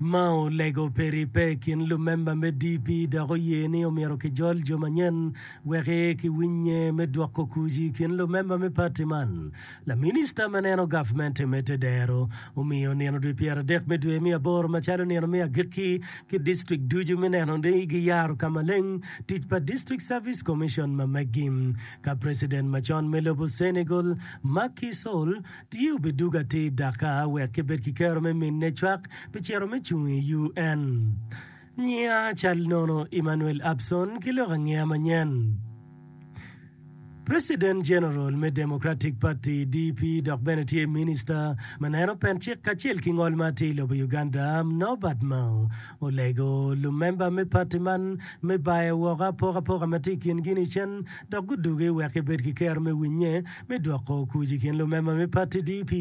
Mao olego pe ribbe i kin lumemba me DP dok oye ni omyero kijol jo manyen wek ki winye me dwoko kuc i kin lumemba me pati man. Laminista ma neno gavmente me tedero omiyo nino dwe pyera dek me dwe me aboro macalo nino me agikki ki district ducu me neno ni gi yaro ka maleng tic pa District Service Commission ma meggi ka president macon me lobo Senegal Macky Sall Tye obidug atir dakka wek kibed ki kero me minne cwak pi cito me cung i UN. Nyinga cal nono Emmanuel Abson ki lok angeya manyen. President General me Democratic Party, DP, dok bene tye Minister ma neno pen cik kacel ki ngol ma atir i lobo Uganda, Norbert Mao Olego lumemba me pati man me bayo woko apokapoka ma tye i kingi nicen dok guduge wek gibed ki kero me winye me dwoko kuc i kin lumemba me pati DP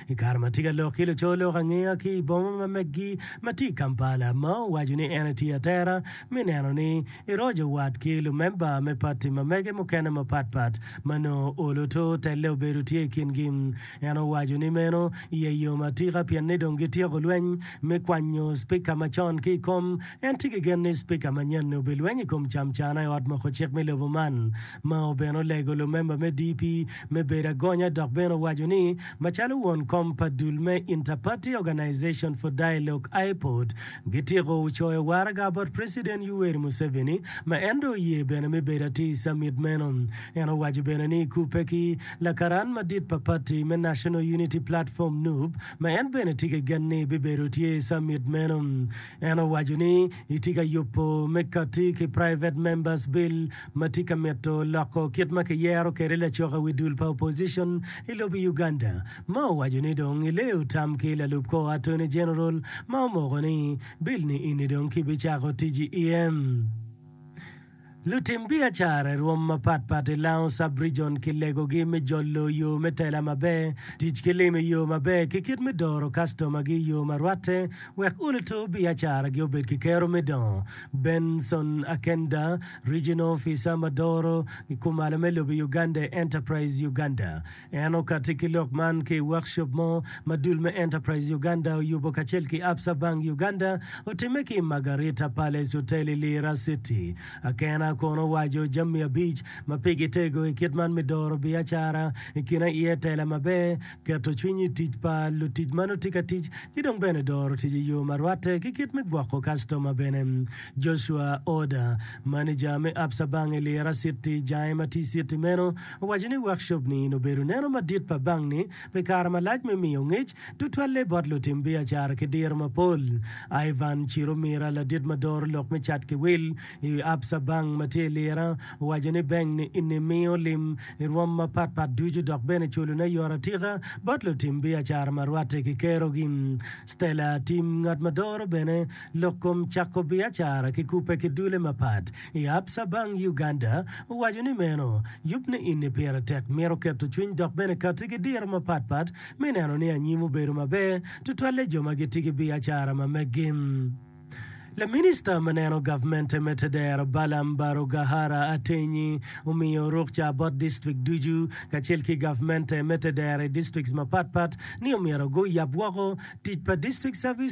i kare ma tye ka lok ki luco lok angeya ki i boma ma meggi ma tye i Kampala ma owaco ni en etye atera me neno ni eroco wat ki lumemba me pati ma mege mukene mapat pat ma nongo olo to telle obedo tye i kingi En owaco ni meno ye yo ma tika pien ni dong gityeko lweny me kwanyo Spika macon ki i kom. En tye ki gen ni Spika manyen-ni obilweny i kom camcana i Ot Moko Cik me lobo man. Mao bene olego lumemba me DP me bedo agonya dok bene owaco ni macalo won kom pa dul me Interparty Organization for Dialogue, IPOD, gityeko coyo waraga bot President Yoweri Museveni ma en dong oye bene me bedo atir i Summit meno. En owaco bene ni kubbe ki Lakaran madit pa pati me National Unity Platform, nup, ma en bene tye ki gen ni bibedo tye i Summit meno. En owaco ni itye ka yubo me kati ki Private Members Bill ma tye ka mito loko kit ma kiyero kwede lacok i wi dul pa opposition i lobo Uganda ma owaco ni dong ileyo tam ki lalup kor Attorney General ma omoko ni bill ni ini dong ki bicako tic i iye. Lutim biacara i rwom mapat pat i Lango Sub-Rijon ki legogi me jolo yo me tela maber, tic ki lim i yo maber ki kit me doro kastomagi i yo ma rwatte wek ulutur biacaragi obed ki kero me dongo. Benson Akenda, Regional Ofica ma doro i kumalo me lobo i Uganda i Enterprise Uganda, En okatti ki lok man ki i workshop mo ma dul me Enterprise Uganda oyubo kacel ki Absa Bank Uganda otimme ki i Margarita Palace Hotel i Lira City. Akena kono owaco jami abic ma pigi tego i kit man me doro biacara, i kin aye tela maber, keto cwiny i tic pa lutic ma nongo tye ka tic, ki dong bene doro tic i yo ma rwatte ki kit me gwoko kastoma bene. Joshua Oda, maneja me Absa Bank i Lira City, jange ma tye i citi meno, owaco ni workshop-ni in obedo neno madit pa bank-ni pi kare malac me miyo ngec tutwalle bot lutim biacara ki diro mapol. Ivan Chiromira, ladit ma doro lok me cat ki wil i wi Absa Bank ma tye i Lira, owaco ni bank-ni ini miyo lim i rwom mapatpat ducu dok bene culone yot atika bot lutim biacara ma rwatte ki kerogi. Stella Atim, ngat ma doro bene lok kom cako biacara ki kubbe ki dule mapat, I apca bang Uganda owaco ni meno yub niini pire tek mito keto cwiny dok bene kati ki diro mapat pat me neno ni anyim obedo maber tutwalle jo ma giti ki biacara ma meggi. Laminista ma neno gavmente me Tedero Balaam Barugahara Atenyi omiyo rukca bot district ducu kacel ki gavmente me Tedero i districts mapat pat ni omyero gu yab woko tic pa district service